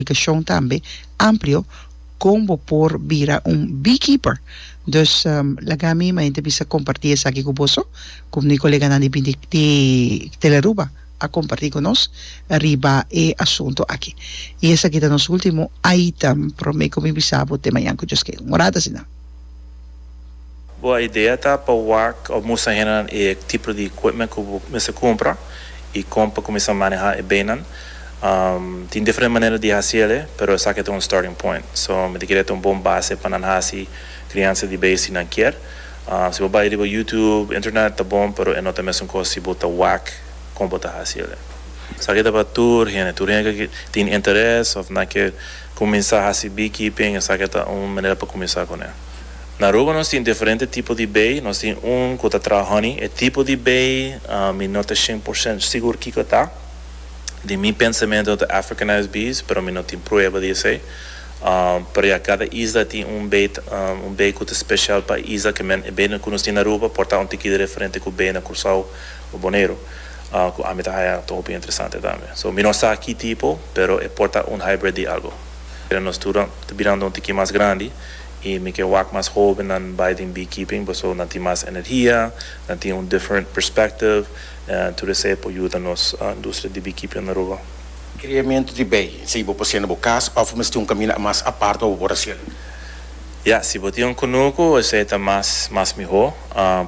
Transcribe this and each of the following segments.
comunicashon tambe amplio con bo por bira un beekeeper. Dus laga mi ma enta bisa comparti esaki cu boso, como mi coleganan di bini di Telearuba a comparti cu nos riba e asunto aki. Y esaki ta nos ultimo item prome cu mi bisa bo te mañan cu Dios ken. Un orada asina. Bo a idea ta pa wak of mustra hendenan e tipo di equipment cu bo mester cumpra y con pa cuminsa maneha e beynan. Tin diferente manera di haci el'e, pero esaki ta un starting point. So, mi ta kere ta un bon base pa nan haci criansa di bey si nan kier. Si bo bay riba YouTube, internet, ta bon, pero e no ta mesun cos si bo ta wak con bo ta haci el'e. Esaki ta pa tur hende. Tur hende cu tin interes of nan kier cuminsa haci beekeeping, esaki ta un manera pa cuminsa cun'e. Na Aruba nos tin diferente tipo di bay, nos tin un cu ta traha honey, e tipo di bay mi no ta cien por ciento sigur kico e ta, den mi pensamento no ta Africanized bees, pero mi no tin prueba di esey, pero ya cada isla tin un bay un bay cu ta special pa e isla, kemen e bay cu nos tin na Aruba por ta un tikito diferente cu bay na Curcao o Boneiru, cu ami ta haya ta hopi interesante tambe, so mi no sa ki tipo, pero e por ta un hybrid di algo. Pero nos tur ta birando un tiki mas grandi y mi ke wak mas hobennan bay den beekeeping paso nan tin mas energia, nan tin un different perspective en tur esey por yuda nos industria di beekeeping den Aruba. Creamento di bay, esey bo por haciendo bo cas of mester tin un camina mas apart wak bo por haciendo? Ya, si bo tin un cunucu esey ta mas mas miho,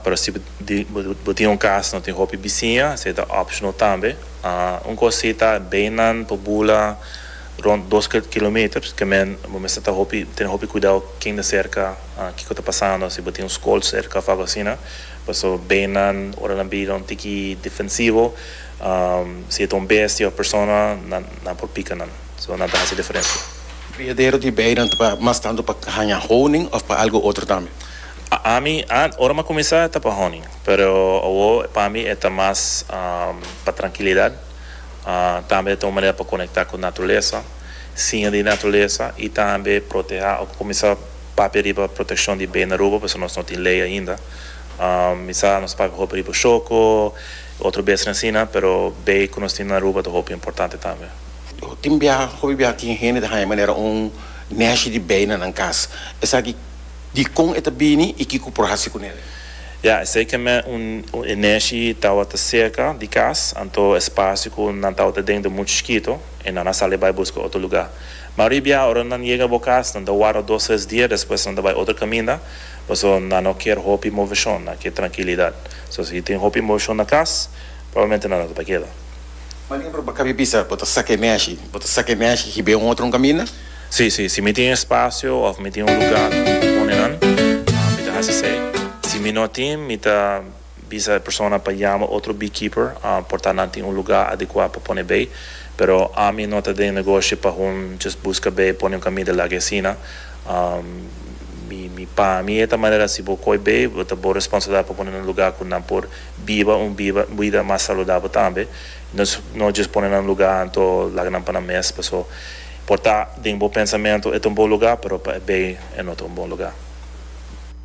pero si bo tin un cas no tin hopi bisiña esey ta optional tambe. Un cos si ta baynan por bula. rond dos kilometers ke men bo mester ta hopi tene hopi kuidou ken ta serka kiko ta pasando si bo tin un skol serka of algo asina paso beinan ora nan bira un tiki defensivo si e ta un bestia of persona nan nan por pika nan so nan ta hasi diferensia. Kriadero di beinan ta mas tantu pa haña honing of pa algo otro tambe? Ami ant ora mi a kuminsá ta pa honing pero awo pa mi e ta mas pa trankilidat. Tambe e ta un manera pa konektá ku naturalesa, siña di naturalesa i tambe protehá. Ora ku kuminsá papia riba protekshon di bena Aruba, pasobra nos no tin lei ainda, mi sa nos ta papia hopi riba shoko i otro besnan asina, pero bei ku nos tin na Aruba ta hopi importante tambe. Ku tin biaha, hopi biaha tin hende ta haña manera un nèshi di bei na nan kas. Esaki dikon e ta bini i kiko por hasi ku nel? Ya, esei kem'é un e neshi tawata serka di kas, anto e spasio ku nan tawata den ta muchu chikito, i nan a sali bai buska otro lugá. Ma ribia, ora nan yega bo kas, nan ta warda dos tres dia, despues nan ta bai otro kaminda, paso nan no kier hopi moveshon, nan kier trankilidat. So, si tin hopi moveshon na kas, probablmente nan no ta pa keda. Maneer, bo ta kaminda bisa bo ta saka e neshi, bo ta saka e neshi hib'é un otro un kaminda. Sí, sí. Si mi tin espasio òf mi tin un lugá ku mi ta pone nan, mi ta hasi esei. Si mi no tin, mi ta bisa e persona pa yama otro beekeeper, por ta nan tin un lugá adekuá pa pone bei. Pero ami no ta den negoshi pa hun djes buska bei pone un kamida lag'e asina. Mi, mi, pa mi e ta manera si bo koi bei, bo ta bo responsabilidat pa pone nan lugá ku nan por biba un biba, bida mas saludabel tambe. No, no djes pone nan lugá anto laga nan pa nan mes. Paso. Por ta den bo pensamentu e ta un bon lugá, pero pa e bay e no ta un bon lugá.